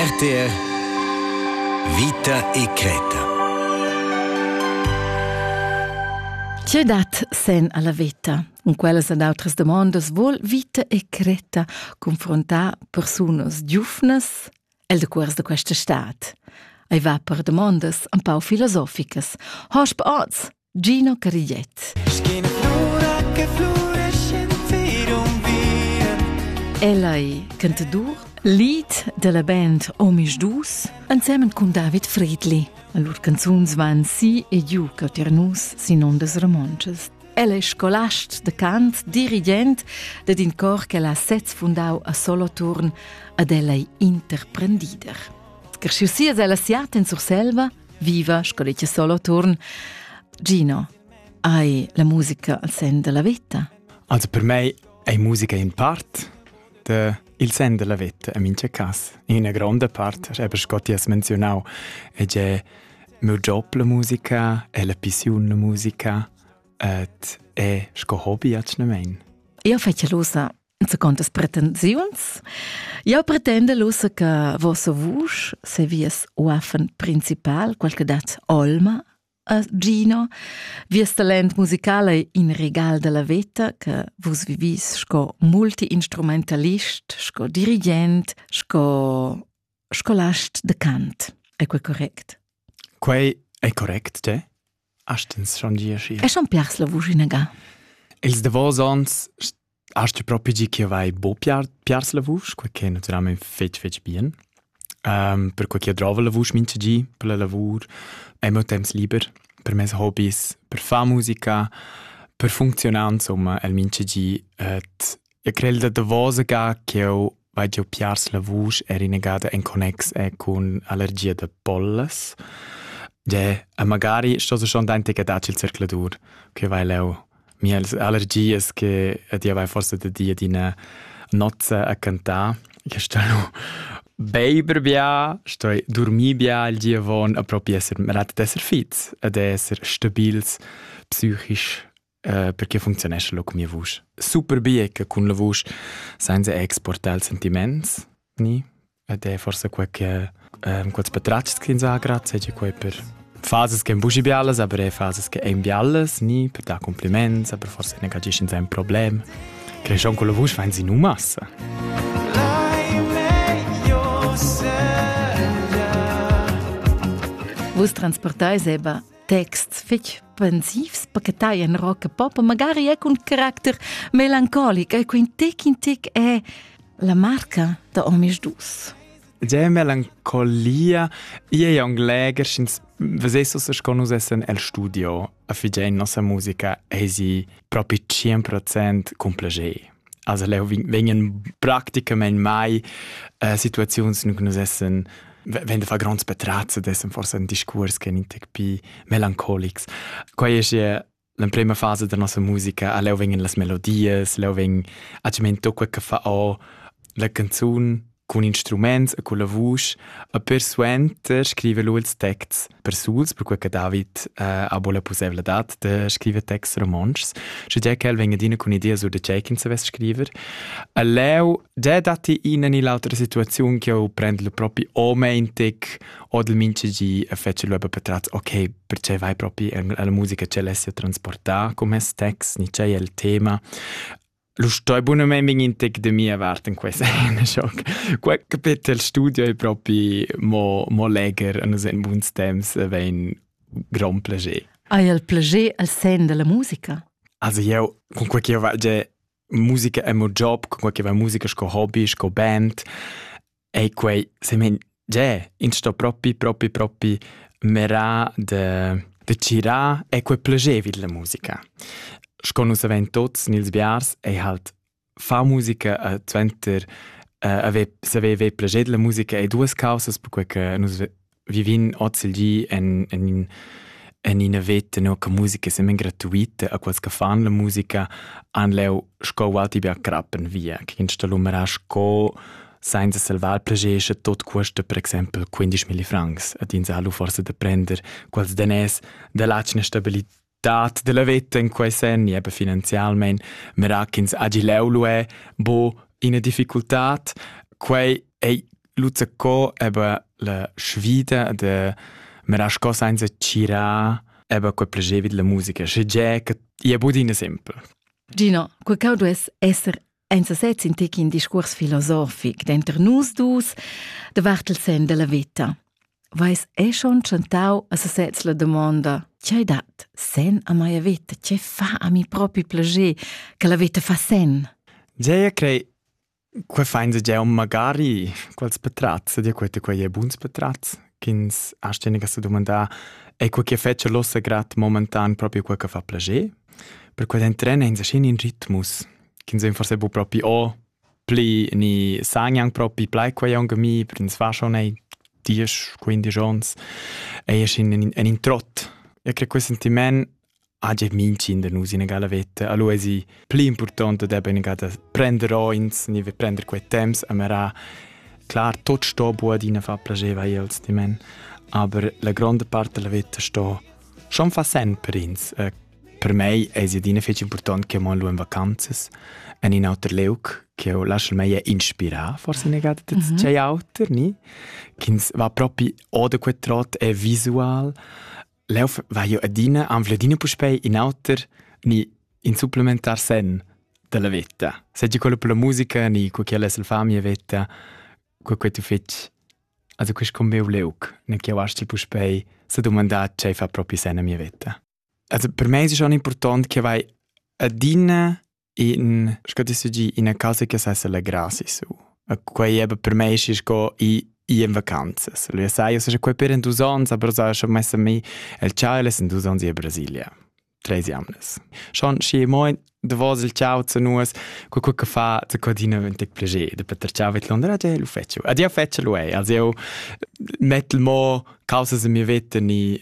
RTR Vita e creta. Tge dat sen alla vita? Cun quellas ed outras domondas vol vita e creta confrontar persunas giufnas el de cuors de questa stat. Ei va per domondas un pau filosoficas. Hosp oz, Gino Cagliet. Ella è cantadur, lead della band Omisch Dus, insieme con David Friedli. Lur canzuns van si e giù cauter nus sin ondas romontschas. Ella è scolast de cant, dirigent ed in cor che l'ha sez fundau a Soloturn, ad ella è interprendider. Cresciu sias ella siat in Surselva, Viva, sco dice solo turn. Gino, hai la musica al sen della vita? Also per me è musica in part de il sen della vita, in mince cas. In una grande parte, è per Scotti has menzionau, è già mio job la musica, è la pissiun la musica, et è sco hobby, acne mein. Io fece losa Zacontas pretensiuns. Jau pretenda ussa che vossa vusch se vies uaffen principal, qual che dat olma a Gino, vies talent musical è in regal della veta che vus vivis sco multiinstrumentalist, sco dirigent, sco scolast de cant. È quel correct? Quei è correct, te? Hast ins schon gieschi? E schon pers la vusch inaga. Els davos ons hast du propi gi che vai bo piars la vusch, quei che naturalmente fetg fetg bien. Um, per quei che drova la vusch mincha gi per la lavur, è mo temps liber per mes hobbies, per far musica, per funzionare insomma el mincha gi et E quel da davosa ga ch'jeu vai giu piars la vusch era inagada en connex e cun allergia da pollas. Ge, e magari sto se schon dentica dac il circladur, che vai leu mia allergias che e dia vai forse da dir d'ina nozza a cantar. Che sto nu beiber bia, sto dormir bia il giavon a propi esser rat d'esser fits, ad esser stabils psychisch Uh, perché funzionescha lo con mia vusch? Super bia che cun la vusch senza exportare il sentiments ni ed è forse quel che um, quels patratgs che ins ha grazie è quel per fases che ein busi bialas, aber è fases che ein bialas, ni per dar compliments, aber forse ne cagisci in sein Problem. Che schon con la vusch fein sie nu massa. Vus transportai seba texts fetg pensivs pachetai en rock e pop, magari è cun caracter melancolic, e quin tic in tic è la marca da Omis Dus. Già melancolia, i è un leger, sch'ins vesessus che nus essen el studio a figlia in nossa musica, e si propi 100% con piacere. Also leu vegnan practicamein mai äh, situaziuns in cui nus essen wenn de fa gronds petrazze dessen forse ein discours che in tec pi melancolics quai es ja l'emprema fase da nossa musica a leu vengen las melodies leu veng a cement tocca che fa o la canzun Cun instruments e culla vusch e persuenter scriver lu ils texts persuls, perquei che David eh, ha buca la pusseivladad da scriver texts romontschs, sche che el vegn adina cun idea sur da tgei ch'ins savess scriver. E leu già datti ina ni l'autra situaziun che eu prend lu propi o meintig o del minchegi e fece lu per tratz, ok, perché vai propi alla musica ce l'essi a transportare come text, ni c'è il tema. Lu stoi bunamein vegnir in tec da mia vart en questa scena schoc. Quei capetel studio è proprio mo, mo leger en en buns temps vein gran plager. Hai il plager al sen della musica? Also io con quel che io faccio musica è mio job, con quel che va musica sco hobby, sco band. Ei quei semen gie, ins sto propi propi propi mirar de, de tgirar è quei plagevil la musica. Sco nus havein tuts nels biars ei halt far musica e suenter eh, haver saver ver plascher della musica ei duas causas per quei che nus vivin oz il di en, en, en ina veta no, che musica sembra gratuita a quels che fan la musica han leu sco walti bia crappen via che in stalumerà sco senza salvar plagesce tot cuesta per exempel 15.000 francs ad in salu forse da prender quels danès da lacina stabilità dat della veta in quei sen e finanzialmein mera ch'ins hagi leu lu è bo ina difficultad quei ei luzza co aber la sfida de mera sco senza cira aber quei plagevit la musica sche ge che ia budina sempre Gino, quei cau duess esser Ein sesez in tec in discuors filosofic denter nus dus davart il sen della veta. Vais è schon chantau a sesez la domonda C'hai dat sen a mia veta? Ce fa a mi propi plager che la veta fa sen? Gea, crei Qua fein se già magari quals petrazz, dir quete quei è buns petrazz, ch'ins ha steniga se domandà è quel che fece l'ossa grat momentan proprio quel che fa plager, per quel entren in in ritmus ch'ins ein forse bu propi o pli ni san anc propi plai quei aunc a mi, per ins fa schon ei diesch, quindisch ons, ei es in, in, in trott. E credo quel sentiment ha già mincin da nus in gala vetta. Allora è più importante da benega da prendere ins, ni prendere quei temps, amara Klar, tot sto bu adina fa piaceva els di men, aber la grande parte della vita sto schon fa sen per ins. Eh, Per mei es adina fich important che mon lù in vacanzas. En in auter leuc che eu lascio mei inspirà, forse negate da mm -hmm. auter, ni? Ch'ins va propi o da quel trot è visual. Leu va io adina, anfle adina puspei in auter, ni in supplementar sen della vetta. Se ti quello per la musica, ni cu quella è la famiglia vetta, cu quei tu fetch Also quest combeu leuc, ne che wasci puspei se domandà ce fa propi sen a mia vetta. Also per me es schon important che vai adina in sco ti gi ina casa che sa essere grasi su. E quei eben per me ist sco i i in vacanzas. Lui sai, io sono qua per in dus ans, aber so schon messa mi el ciao in dus ans in Brasilia. Tres jamnes. Schon schi moi de vos il ciao zu nus, co co che fa zu codina vent tic plege, de Peter ciao mit Londra, de lu fetchu. Adia fetchu lui. Also io mettel mo causa se mi vetten i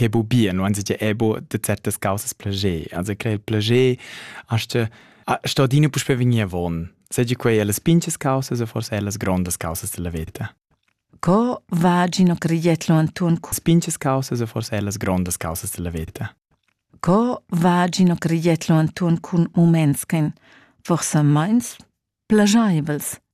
che bu bien, non si è bu de certas causas plager. Also crea il plager, aste sto dine puspe vegnir von. Seigi quei alle spinches causas o forse alle grondas causas della vita. Co va Gino Criglietlo Anton? Spinches causas o forse alle grondas causas della vita. Co va Gino Criglietlo Anton cun umens che forse meins plagiables?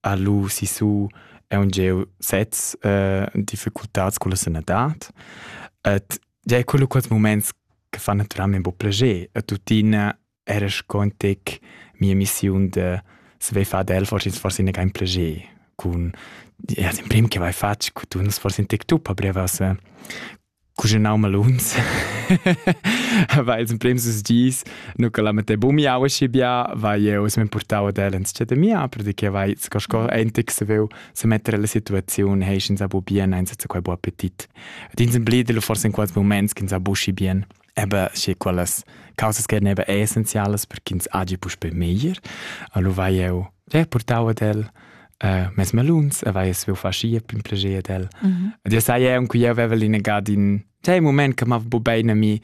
ha lu sissu aunc sez eh, difficultads con la sanadad. Et già quello quels moments che fan naturalmente un po' piacere. E tuttina era scontic mia missione de se vai far del forse forse ne kein piacere con ja im prim che vai fatg con tu forse in tic tu pa brevas cuginau maluns va ils emprims dis nu che la mette bu miau schi bia va jeu se portau ad el ins chat mia perché vai sco sco entic se veu se mettere la situazione he ins abu bien eins zu quei bu appetit ed ins emblide forse in quals moments ins abu schi bien Eben, schi quellas causas che neva essenzialas per ch'ins hagi puspei meglier. Allo vai eu der portau ad el äh, mes meluns e vai es faschia pin plascher ad el. Mm -hmm. Dir sai eu che eu aveva linegat in tei moment che m'ava bu bene mi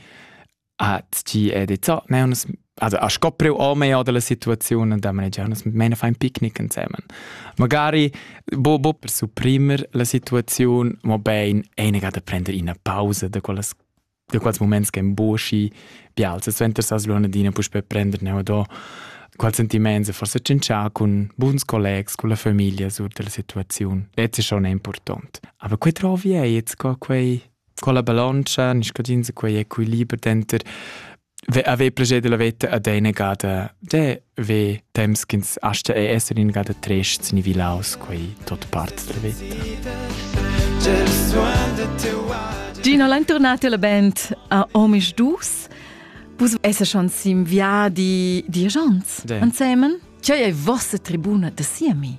a tgi è di zo, ne uns also a scopreu o me oder la situazione da manager uns meine fein picknick inzähmen. Magari bo bo per supprimer la situazione, mo bein einiger da prender ina pausa da quellas da quals moments che emboschi bial se suenter sa slonadina puspe prender neu do qual sentiments e forse cincià con buns collegs, con la famiglia sur della situazione. Ets è schon important. Aber quei trovi ei jetzt co quei con la balancia, nis codins quei equiliber denter Avevi proget della veta ad eine gada de ve temps ch'ins asta e esser in gada trest sin vilaus quei tot part della veta. Gino l'internati alla band a Omisch Dus. Vus esse schon sim viadi diagents ansemen? Che è vossa tribuna da siemi?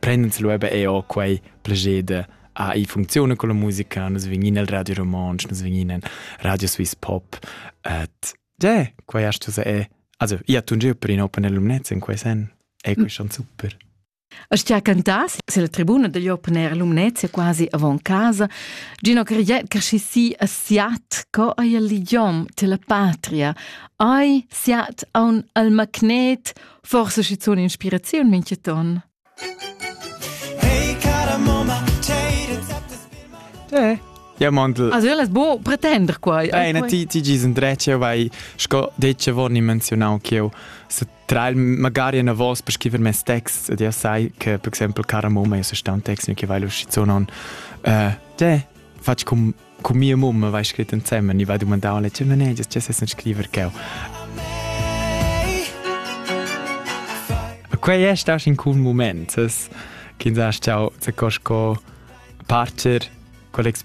prend'ins lu eben eau quei plager de ah, i funcziuna con la musica, nus vegnin al Radio Romontsch, nus vegnin in Radio Swiss Pop, et de, quei hast du se e, also, i ha tun giu per in open air lumnezza in quei sen, e quei schon super. As ti ha cantas, se la tribuna degli open air lumnezza quasi avant casa, Gino Cariet crescissi a siat co ai l'idiom te la patria, ai siat a un al magnet Forse schizun inspiraziun mincheton. Hey, cara mamma, Eh. Ja, Mandl. Also, io las bo pretender qua. Nein, ti, ti gis indrece, vai, sco detto, vorni menzionau che io, se tra il, magari una voce per scrivere mes text, ed io sai che, per esempio, cara mamma, io se sta un text, che vai lo schizonon, eh, te, faccio com Cu mia mamma vai scrit ensemen, i va dumandar alle tue manager, tue sei scriver cheu. Quei è stato in un momento che sa ciao, se cosco parcher quell'esperienza